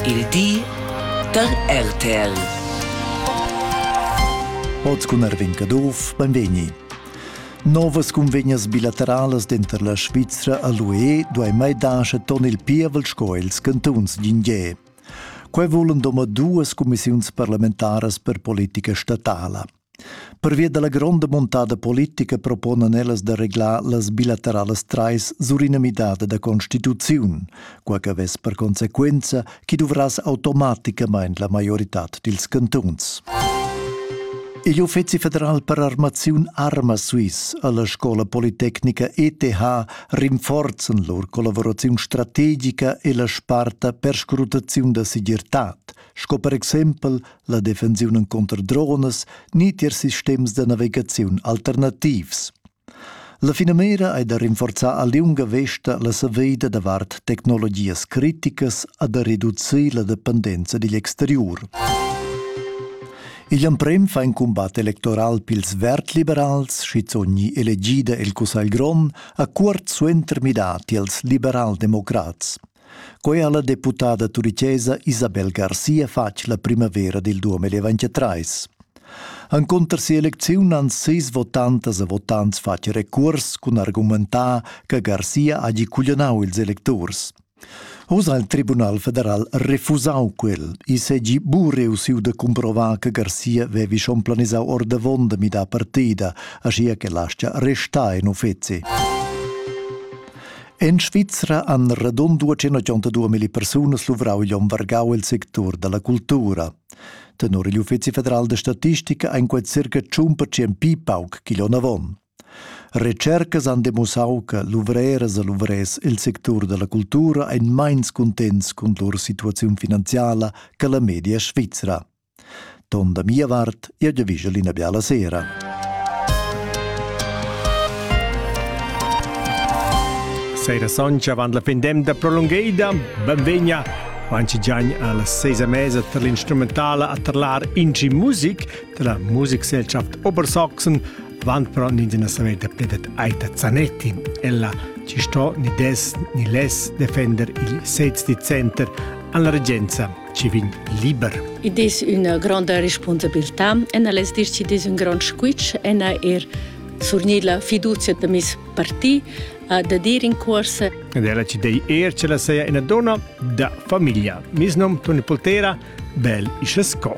Il di da RTL. Oz cun Erwin Caduff, benvegni. Novas cunvegnas bilateralas denter la Svizra e l'UE duei mai dar ton il pievel sco ils cantuns d'Indier. Quei vulan domadduas cumissiuns parlamentaras per politica statala. Pervia dalla gronda muntada politica proponan ellas da reglar las bilateralas trais sur ina midada da constituziun, quai che vess per consequenza chi duvrass automaticamain la maioritad dils cantuns. Igl Uffizi federal per armaziun Arma Swiss alla scola politecnica ETH rinforzen lur collaboraziun strategica e la sparta per scrutaziun da segirtad, sco per exempel la defensiun encunter dronas ni tier sistems da navigaziun alternativs. La finamira è da rinforzar a liunga vesta la saveida davart tecnologias criticas a da reducir la dependenza digl exterior. Igl emprem fa in combat electoral pils vert-liberals, schizogni elegida el Cussagl Grond, a cuort suenter midati als liberal-democrats. Quei ha la deputada turichesa Isabel Garcia fatg la primavera dil 2023. Encunter si'elecziun han sis votantas e votants fatg recuors cun argumentar che Garcia hagi cuglionau ils electurs. Oz ha il Tribunal federal refusau quel. I segi bu reussiu da cumprovar che Garcia vevi schon planisau ordavon da midar partida, aschia che lascia restar in uffeci. En Svizra han radund 282 persunas luvrau igl onn vargau el sectur dalla cultura. Tenor igl Uffizi federal da statistica ein quei circa 100% pi pauc ch'igl onn avon. Recercas han demussau che luvreras e luvrers el sectur dalla cultura ein meins cuntents cun lur situaziun finanziala che la media svizra. Ton da mia vart, jeu giavischel ina biala sera. Sera soncia avant la fin d'emda prolungeida, benvegna manchi giagn alla seisa mesa tar l'instrumentala a tarlar inci music della Musikgesellschaft Obersaxon, avant però nins ina saver da pledet Aita Zanetti. Ella ci sto ni des ni les defender il 16 Center an la regenza ci vegn liber. Id es üna gronda respunsabiltà e na less dir chi'd es ün grond squitsch e na eir surgnir la fiduzia da meis parti da dir in cuorsa. Ed ella ci dei eir che la seia ina donna da famiglia. Mis nom Toni Poltera, bel ische sco.